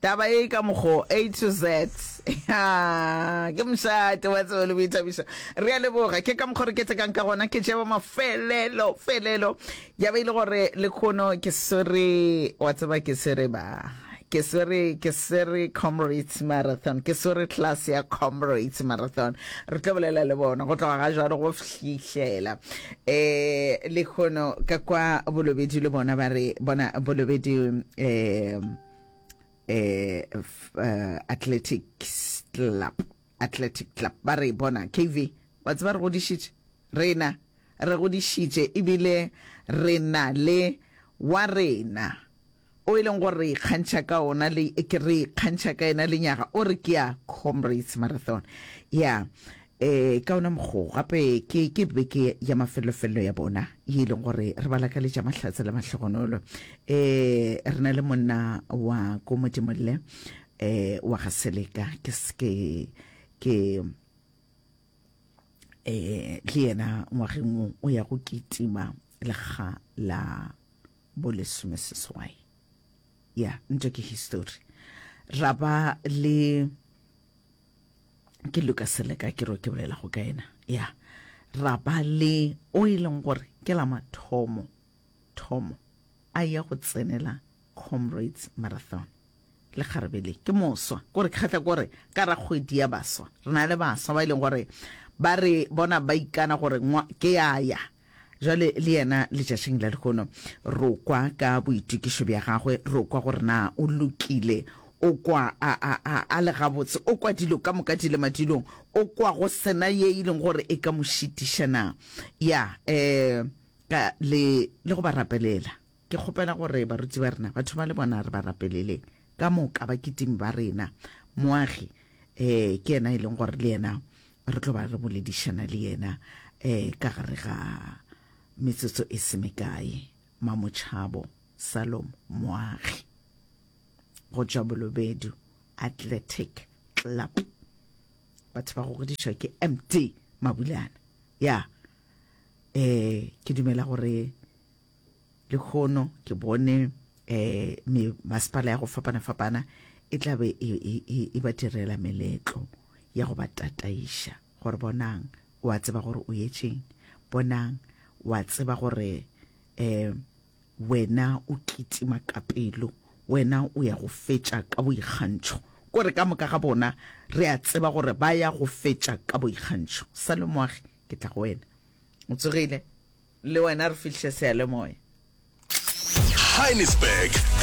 taba e ka mogo a to z Ya, ke mošate wa tsebo le boithabišo re a leboga ke ka mokgo re ketekang ka gona ke jeba mafelelo felelo ya be e le gore le kgono ke swere wa tseba ke swere ba ke swere ke swere comrades marathon ke swere class ya comrades marathon re tlo bolela le bona go tloga ga jalo go fihlela Eh, lehono ka kwa bolobedi le bona ba re bona bolobedi eh, eh, f- eh, athletics club athletic club ba re bona kv wa tseba re godišitše rena re godišitše ebile re na le wa rena o e leng gore re ikgantšha ka ona le ke re ikgantšha ka ena lenyaga o re ke ya comrades marathon ya um ka ona mokgo gape ke ke beke ya mafelofelelo ya bona ye e leng gore re ba lakaletša mahlatse le mahlogonolo um re na le monna wa ko modimolle um wa ga seleka ke ke ke eh le yena ngwageng o ya go kitima lekga la bo lesomeseswai ya ntho ke histori ra ba le ke luka seleka ke ro ke bolela go ka ena ya ra ba le o e leng gore ke la mathomo thomo a ya go tsenela comrades marathon le kgarebe le ke moswa gore ke kgatla gore ka ra kgwedi ya baswa re na le baswa ba e leng gore ba re bona ba ikana gore ke ya ya Bjale le yena letšatšing la lehono, ro kwa ka boitokišo bja gagwe, ro kwa gore na o lokile, o kwa a, a, a, a le gabotse, o kwa dilo ka moka di le madulong, o kwa go sena ye e leng gore e ka mo šitiša na. Ya, eh, ka le, le go ba rapelela. Ke kgopela gore baruti ba rena ba thoma le bona re ba rapelele ka moka bakitimi ba rena. Moagi eh ke yena e leng gore le yena re tlo ba re boledišana le yena eh ka gare ga metsotso e se mekae. Mamotšhabo Salom Moagi go tšwa Bolobedu Athletic Club. Batho ba gogodišwa ke MD Mabulana. Ya eh ke dumela gore Lehono ke bone um masepala ya go fapana-fapana e tla be e, e, e, e ba direla meletlo ya go ba tataiša gore bonang o a tseba gore o yetšeng bonang o a tseba gore um wena o kitima ka pelo wena o ya go fetša ka boikgantšho kore ka moka ga bona re a tseba gore ba ya go fetša ka boikgantšho salomoagi ke tla go wena o tsogile Le wena re fihle seyalemoya. Heinisberg